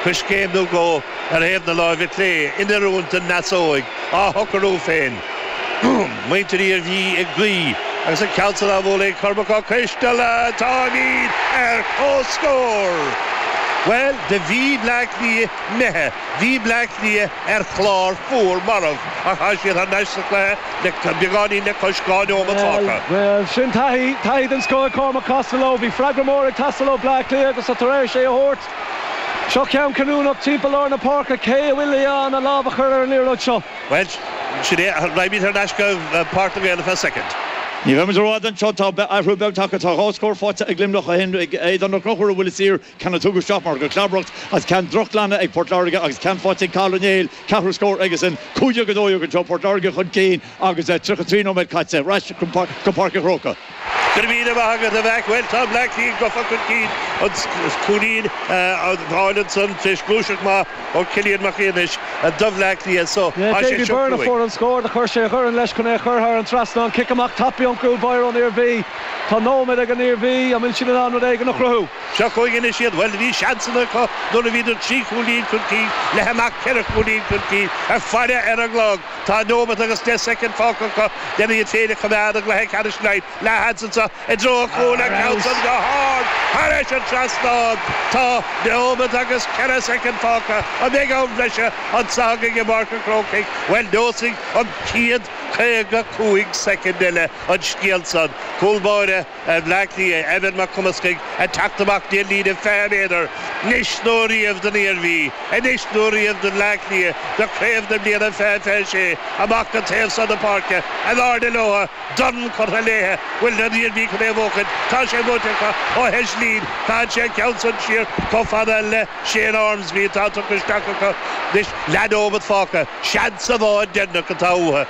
Coiscéim nó dhó ar thaobh na láimhe clé in oiriúint don ndeasóig á shocarú féin. Muintir na hIarmhí ag guí agus an ceann san á bhualadh ag Cormac Ó Coisteala táimíd ar comhscór! Bhuel, do bhí Bleá Cliath imithe bhí Bleá Cliath ar chlár fuar marbh ach tá siad thar n-ais sa chluiche le beagáinín le cois dhá neomat fágtha. Bhuel, sin taithí, taithí den scoth ag Cormac Costello. Bhí freagra mór ag teastáil ó Bleá Cliath agus tá tar éis é a thabhairt. Seo ceann cinniúnach timpeall lár na páirce, cé a bhfuil in ann an lámh a chur ar an liathróid seo? Bhuel, sin é, raghaimid thar n-ais go Páirc na nGael ar feadh soicind. Ní bheimid i bhfad anseo, tá athrú beag tagtha. Tá dhá scór faighte ag Luimneach ó shin, ag Aodán Ó Conchúir ó bhuille saor, ceann a tugadh isteach mar gheall ar chlabaireacht agus ceann drochghlanadh ag Port Láirge agus ceann faighte ag Cathal Ó Néill, ceathrú scór aigesan. Cúig dhéag a dó dhéag anseo, Port Láirge chun cinn agus 33 nóiméad caite. Ar ais go Páirc an Chrócaigh. Go raibh míle maith agat a Mhac! Bhuel tá Bleá Cliath gofa chun cinn agus cúilín á fháil ansan tar éis gluaiseacht maith ó Chillian Mac Aonghais do Bhleá Cliath so tá sé seo cruaigh. Davy Byrne a fuair an scór do chuir sé a dhorn leis chun é a chur thar an trasnán. Cic amach tapa ón gcúl báire ón Iarmhí. Tá nóiméad ag an Iarmhí, an bhfuil siad in ann rud éigin a chruthú? Seo chugainn anois iad, bhuel bhí seansanna acu nuair a bhíodar trí chúilín chun cinn, leath amach ceithre chúilín chun cinn ach faire ar an gclog! Tá nóimeat agus deich soicind fágtha acu len iad féin a choimeád i gcluiche ceannais Laighin. Leathsheans ansan i dtreo an chúil ach ceann san go hard thairis an trasnán. Tá nóimeat agus ceithre soicind fágtha. An mbeidh am bhreise anseo againn i bPáirc an Chrócaigh? Bhuel neosfaidh an chéad caoga cúig soicind eile an scéal san. Cúl báire. Ar Bhleá Cliath, Evan Mac Cumascaigh ag teacht amach go dtí an líne 20 méadar. Anois nó riamh don Iarmhí. Anois nó riamh do Bhleá Cliath do chraobh na bliana 2026. Amach go taobh san na páirce. In airde leo. Dorn curtha léithi. Bhfuil an Iarmhí chun é a bhuachaint? Tá sé buaite acu ó Heslin. Caitheann sé an ceann san siar chomh fada le Shane Ormsby atá tugtha isteach acu anois. Leath nóimeat fágtha. Seans amháin deireanach atá uathu.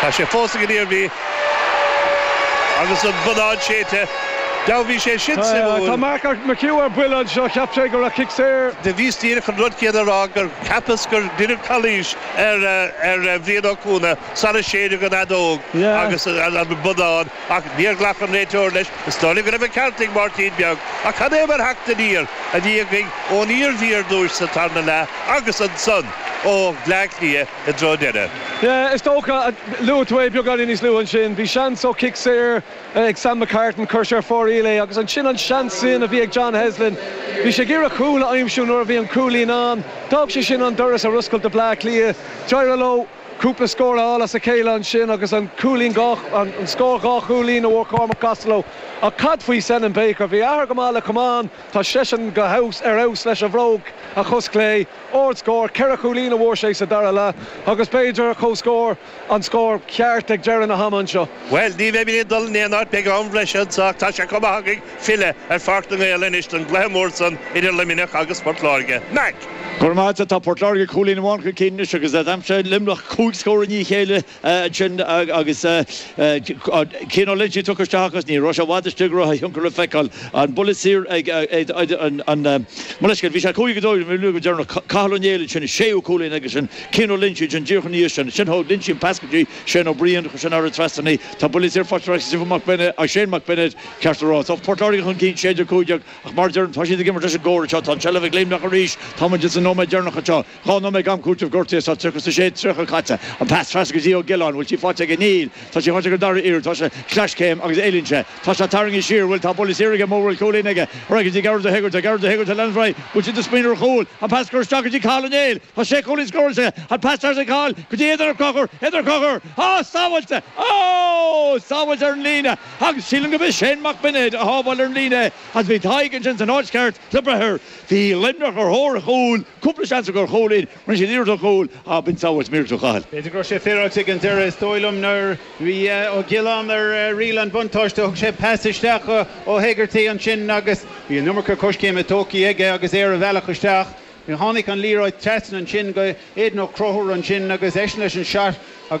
Tá sé fós ag an Iarmhí agus an bonnán séidte. Do bhí sé sin suimiúil. Tá Mark McHugh ar buile anseo. Cheap sé go raibh cic saor. Do bhíos díreach chun an rud céanna a rá gur cheapas gur deineadh calaois ar Bhrian Ó Cuana sara séideadh an fheadóg agus an bonnán ach níor ghlac an réiteoir leis. Is dóigh liom go raibh an ceart ag Máirtín beag ach cad é mar theacht aniar a bhí againn ón Iarmhí ar dtúis sa tarna leath agus ansan ó Bhleá Cliath. i dtreo deireadh. Yeah, is dócha. Luaigh tú é beagáinín níos luaithe ansin. Bhí seans ó chic saor ag Sam McCartan, chuir sé ar fóraoil é agus ansin an seans sin a bhí ag John Heslin. Bhí sé ag iarraidh cúl a aimsiú nuair a bhí an cúilín ann. D'fhág sé sin an doras ar oscailt do Bleá Cliath. D'éirigh leo cúpla scór a fháil as a chéile ansin agus an cúilín dhá, an scór dhá chúilín a bhfuair Cormac Costello. Ach cad faoi Senan Baker? Bhí a athair go maith le camán. Tá seisean go ar fheabhas leis a bhróg a chos chlé. Ardscór, ceithre chúilín a fuair sé sa dara leath agus b'fhéidir comhscór an scór ceart ag deireadh na hama anseo. Bhuel, ní bheimid ag dul in aon áit, beidh am breise anseo ach tá sé chomh maith againn filleadh ar Pháirc na nGael anois don gcluiche mór san idir Luimneach agus Port Láirge. Mac! Go raibh maith agat, tá Port Láirge cúilín amháin chun cinn anois agus d'aimsigh Luimneach cúig scór i ndiaidh a chéile. ansin agus Cian Ó Loinsigh tugtha isteach agus ní raibh sé i bhfad istigh go raibh a thionchar le feiceáil. An buille saor ag an mBullscadh. Bhí sé 5-2 nuair a bhí amuigh go deireanach. Cathal Ó Néill ansin a séú cúilín aonair aige sin. Cian Ó Loinsigh ansin díreach ina dhiaidh sin. Ansin thug Ó Loinsigh an pas go dtí Shane Ó Briain. Chuir sé thar an trasnán í. Tá buille saor faighte ag Stephen Mac Bennett, ag Shane Mac Bennett ceart a rá. Tá Port Láirge chun cinn 16-15 ach mar a deirim tá siad ag imirt leis an gcóir anseo. Tá an tseilbh ag Luimneach arís. Táimid ins na nóiméid deireanacha anseo. Dhá nóiméad d'am cúitimh gortaithe sa 36 30 caite an pas trasna go dtí Ó Giolláin, bhfuil sí faighte aige? Níl. Tá sí faighte ag an dara iarraidh, tá sé, sleaschéim agus éalaíonn sé, tá sé tarraingthe siar, bhfuil, tá buille saor aige, mura bhfuil cúilín aige, ar aghaidh go dtí Gearóid de hÉigeartaigh, Gearóid de hÉigeartaigh lena dhraoi, bhfuil siad ag smaoineamh ar chúl, an pas curtha isteach go dtí Cathal Ó Néill, tá sé chúilín scóráilte aige, an pas trasna ag Cathal go dtí Aodán Ó Conchúir, Aodán Ó Conchúir, ó sábháilte, sábháilte ar an líne agus sílim go b'é Shane Mac Beinéid a shábháil ar an líne é agus bhí Tadhg ansin san áit cheart le breith air. Bhí Luimneach ar thóir an chúil, cúpla seans acu ar chúilín, rinne siad iarracht ar chúl ach b'in sábháilt mhíorúilteach a Chathail. B'fhéidir go raibh sé féaráilte ag an deireadh, is dóigh liom nuair bhí Ó Giolláin ar riail an bhuntáiste thug sé pas isteach do Hegarty ansin agus bhí an iomarca coiscéime tógtha aige agus é ar a bhealach isteach. Tháinig an liathróid trasna ansin go Aidan Ó Conchúir ansin agus eisean leis an shot agus